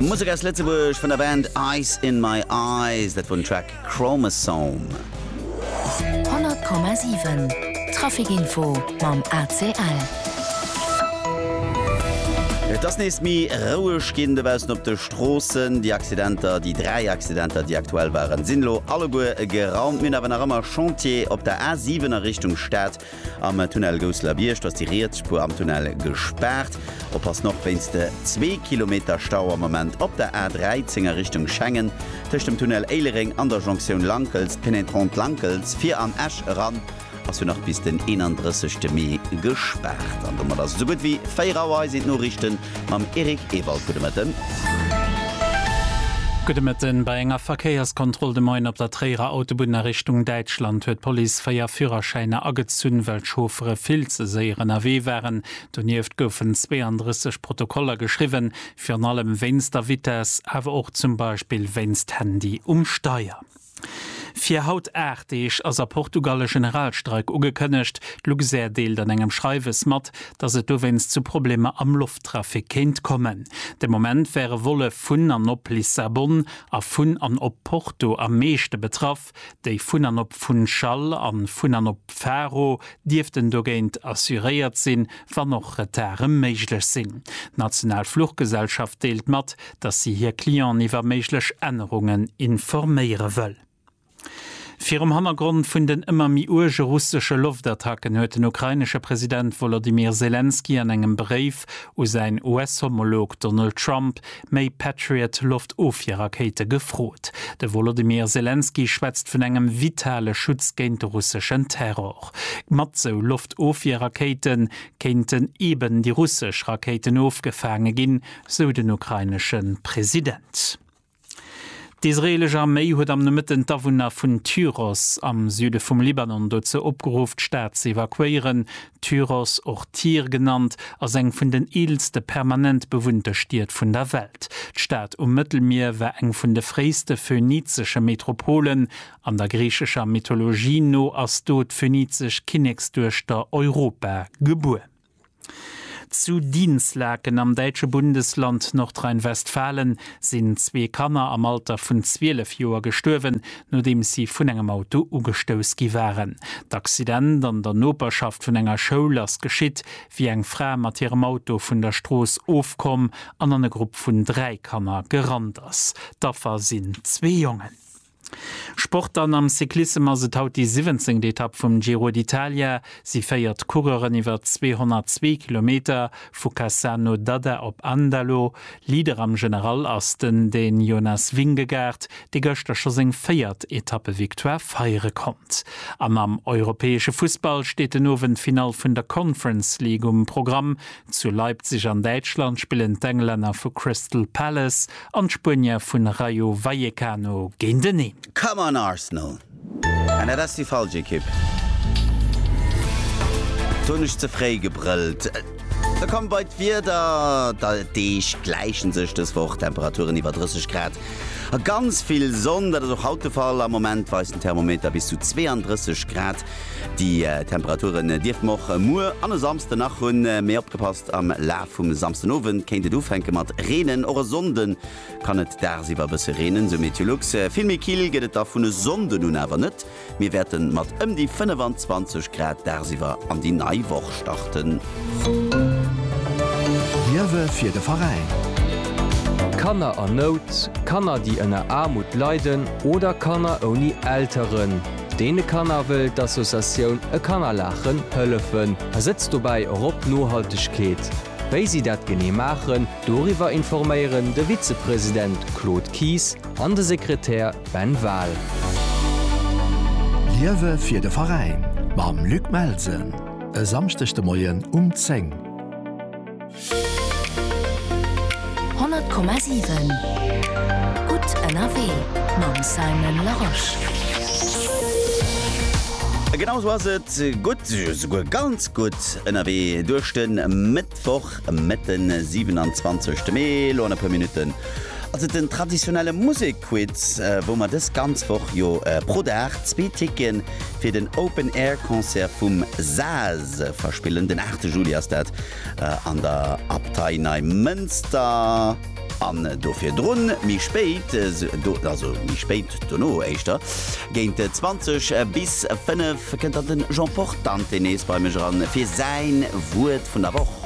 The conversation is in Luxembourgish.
Musek aus Lëtzebuerg vun der Band Ice In My Eyes, dat wor den Track Chromosome. 100,7 Traficinfo mam ACL. Et ass nees méi roueg ginn dobaussen op de Stroossen. Déi Accidenter, déi dräi Accidenter, déi aktuell waren, sinn elo alleguer geraumt. Mir hunn awer nach ëmmer Chantier op der A7 a Richtung Stad. Am Tunnel Gousseler-Biergt ass déi riets Spuer am Tunnel gespaart. Oppassen och wéinst de zwee Kilometer Stau am Moment op der A13 a Richtung Schengen. Tëscht dem Tunnel Éilereng an der Jonktioun Lankels, Pénétrante Lankels, fir an Esch eran ass jo nach bis den 31 Mee gespaart. An domat ass esou gutt wéi 4 Auer. Hei sinn d'Noriichten. mam Eric Ewald. Gudde Mëtten. Gudde Mëtten. Bei enger Verkéierskontroll de Moien op der Tréierer Autobunn a Richtung Däitschland huet d'Police véier Führerschäiner agezunn, well d'Chauffere vill ze séier ënnerwee waren. Donieft goufen 32 Protokoller geschriwwen, virun allem wéinst der Vitess, awer och zum Beispill wéinst Handy um Steier. Fir haut 8 Deeg ass a Portugal e Generalstreik ugekënnegt. D'Luxair deelt an engem Schreiwes mat, datt et dowéinst zu Problemer am Lofttrafic kéint kommen. De Moment wäre Volle vun an op Lissabon a vun an op Porto am meeschte betraff. Déi vun an op Funchal a vun an op Faro dierften dogéint assuréiert sinn, wann och Retarde méiglech sinn. D'national Fluchgesellschaft deelt mat, dass si hir Clienten iwwer méiglech Ännerungen informéiere wëll. Virum Hannergrond vun den ëmmer méi uerge russesche Loftattacken huet den ukrainesche President Wolodymyr Selenskyj an engem Bréif u säin US-Homolog Donald Trump méi Patriot-Loftofwierrakéite gefrot. De Wolodymyr Selenskyj schwätzt vun engem vitale Schutz géint de russeschen Terror. Mat sou Loftofwierrakéite kéinten eeben déi russesch Rakéiten ofgefaange ginn, sou den ukrainesche President. D'israeelesch Arméi huet am Nomëtten d'Awunner vun Tyros am Süde vum Libanon dozou opgeruff, d'Stad ze evakuéieren. Tyros, och Tyr genannt, ass eng vun den eelste permanent bewunnte Stied vun der Welt. D'Stad um Mëttelmier war eng vun de fréiste phönizesche Metropolen. An der griichescher Mythologie no ass do d'phönizesch Kinneksduechter Europa gebuer. Zu Dinslaken am däitsche Bundesland Nordrhein-Westfalen sinn zwee Kanner am Alter vun 12 Joer gestuerwen, nodeems si vun engem Auto ugestouss gi waren. D'Accident an der Noperschaft vun enger Schoul ass geschitt, wéi eng Fra mat hirem Auto vun der Strooss ofkomm an an e Grupp vun dräi Kanner gerannt ass. D'Affer sinn zwee Jongen. Sport Dann am Cyclissem ass et haut déi siwwenzéngt Etapp vum Giro d'Italia. Si féiert Coureuren iwwer 202 Kilometer, vu Cassano d'Adda op Andalo. Leader am General ass den Dän Jonas Vingegaard, dee gëschter scho seng véiert Etappe-Victoire feiere konnt. An am europäesche Fussball steet den Owend d'Finall vun der Conference League um Programm. Zu Leipzig an Däitschland spillen d'Englänner vu Crystal Palace an d'Spuenier vun Rayo Vallecano géinteneen. Come on Arsenal! An dat ass déi falsch Ekipp. Do hunn ech ze fréi gebrëllt. Da komme bei d'Wieder. D'Deeg gläichen sech dës Woch, Temperaturen iwwer 30 Grad a ganz vill Sonn. Dat ass och haut de Fall. Am Moment weist den Thermometer bis zu 32 Grad. Déi Temperaturen dierften mer och muer an e Samsden nach hunn, mee opgepasst, am Laf vum Samsden Owend kéint et ufänke mat reenen. Och e Sonnde kann et dagsiwwer e bësse reenen, sou Meteolux. Vill méi kill gëtt et da vun e Sonnden un awer net. Mir wäerte mat ëm déi 25 Grad dagsiwwer an déi nei Woch starten. Liewe fir de Veräin. Kanner an Nout, Kanner, déi ënner Aarmut leiden oder Kanner ouni Elteren. Deene Kanner wëll d'Associatioun E Kanner laachen hëllefen a setzt dobäi och op Nohaltegkeet. Wéi si dat genee maachen, doriwwer informéieren de Vizepresident Claude Kies an de Sekretär Ben Wahl. Liewe fir de Veräin mam Luc Melsen e Samschdeg de Moien um 10. Honnert Komma siwen Gutt ënnerwee mam Simon Larosche. Genau sou ass et, gutt, souguer ganz gutt ënnerwee duerch de Mëttwoch, Mëtt den 27 Mee. Elo an e puer Minutten ass et den traditionelle Musekquiz, wou mer dës ganz Woch jo pro Dag zwee Ticke fir den Open Air Concert vum SAAS verspillen. Den 8 Juli ass dat. an der Abtei Neimënster an do virdrun méi spéit, also méi spéit dono éischter géint 20 bis 5, kënnt dann den Jean Portante nees bei mech eran fir säin Wuert vun der Woch.